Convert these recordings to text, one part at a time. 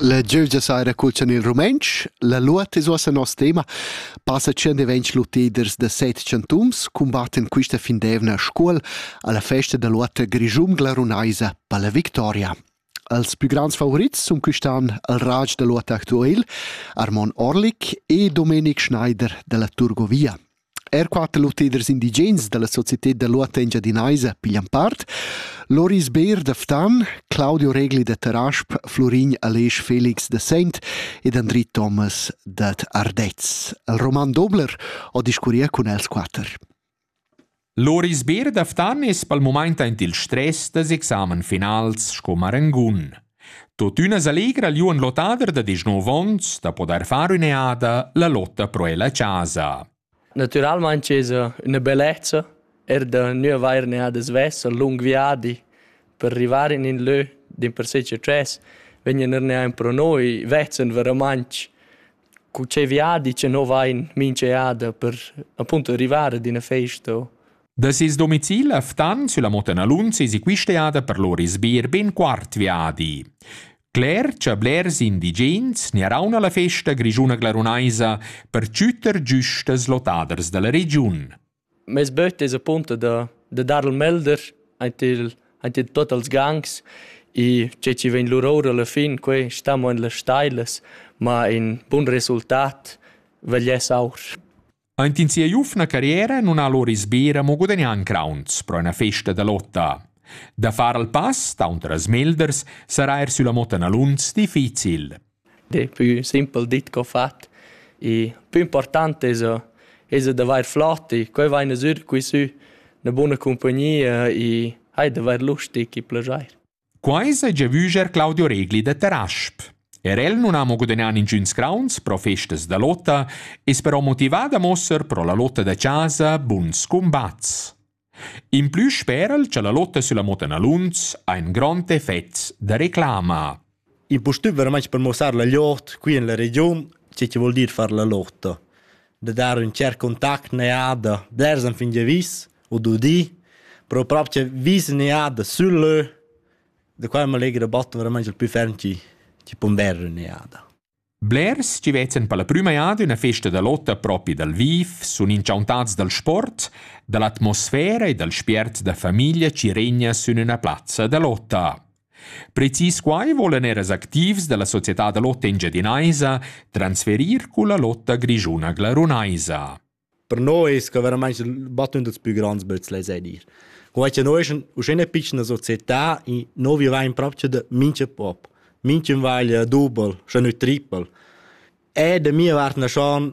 La giövgia saira culchan il rumentsch, la luot es uossa nos tema. Passa tschient e ventg lutiders da set chantuns cumbattan quista findevna Scuol alla festa da luotta grischungla runaisa per la victoria. Als più grands favorits sun quist'an il Raj da luotta actuel, Armon Orlik e Domenic Schneider dalla Turgovia. Er quatter lotteders indigens da la societad da lur tengia dinaisa piglian part. Loris Beer da Ftan, Claudio Regli da Tarasp, Florin Aleix Felix da Sent ed Andri Thomas dad Ardez. Il roman Dobler ho discurria cun els quatter. Loris Beer da Ftan es pel mumaint aint il stress das examen finals sco marangun. Tuottüna s'allegra el ün lottader da deschnov ons da podair far ün'eada la lotta pro el a chasa. Natüralmaing esa üna bellezza er da gnü avair un'eada svessa, ün lung viadi per rivar in ün lö dimpersè cha dschess, vegnan eir neir pro noi, vezzen veramaing cu che viadi cha no vain minch'eada per appunto rivar ad üna festa o Da ses domicil a Ftan sulla Motenalunz esi quist'eada per lur isbir ben quart viadi. Cler cha blers indigens niarauna la festa grischuna glarunaisa per chüter giustas lotaders dalla regiun. Mes böt es appunto da, da dar il melder aint, il, aint in tot als gangs e che ci vegn lur ora alla fin, quei stamo in las stailas, ma in bun resultat vegl es aur. Aint in sia giufna carriera nun ha lur isbera mo gudagnà in crauns pro üna festa da lotta. Da far al pass taunter as melders sarà eir sülla motta Naluns difficil. De pü simpel dit co fat. E pü important es es d'avair flot e quai vaina sür qui sü 'na buna cumpagnia e hai d'avair lust e chi plajair. Quai s'ha giavüscher Claudio Regli da Tarasp. Er el non ha mo gudagnà ningüns crauns pro festas da lotta, es però motivà da mosser pro la lotta da chasa buns combats. In plü spera'l cha la lotta sulla Motta Naluns ha ün grond effet da reclama. Il postüm veramente per mossar la lotta qui in la region, che che vuol dir far la lotta. da dar ün tschert contact neada ders an fin giavisch u du di, però propcha vis neada sül lö, da qua ün allegra botto veramaing il pü ferm chi chi pondera neada. Blers chi vezzen per la prüma jada üna festa da lotta propi dal viv, sun inchauntats dal sport, da l'atmosfera e dal spiert da famiglia chi regna sün üna plazza da lotta. Precis quai volan eras activs dalla società da lotta engiadinaisa transferir culla lotta grischuna glarunaisa. Per noi es que veramaing il battun dals pü grands böts lais a dir. Quai cha noi eschan uschè üna pitschna società e no vivain propcha da mincha pop, minch'ün vaglia dubel, scha nü tripel. E da mia vart naschan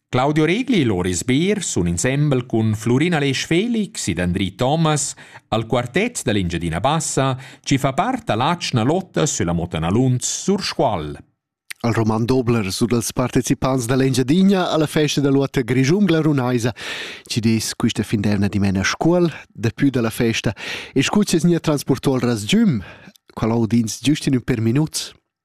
Claudio Regli e Loris Beer sun insembel cun Flurina Lesch Felix ed Andri Thomas al quartet da l'Engiadina Bassa chi fa part da l'atschna lotta sülla Motana Lunz sur Scuol. Al roman Dobler su dals partecipants da l'Engiadina alla festa da lotta grischun glarunaisa ci des quista finderna dimena Scuol dapü da la festa e scuccias nia transporto al rasgiüm qual audins giust in ün per minuts.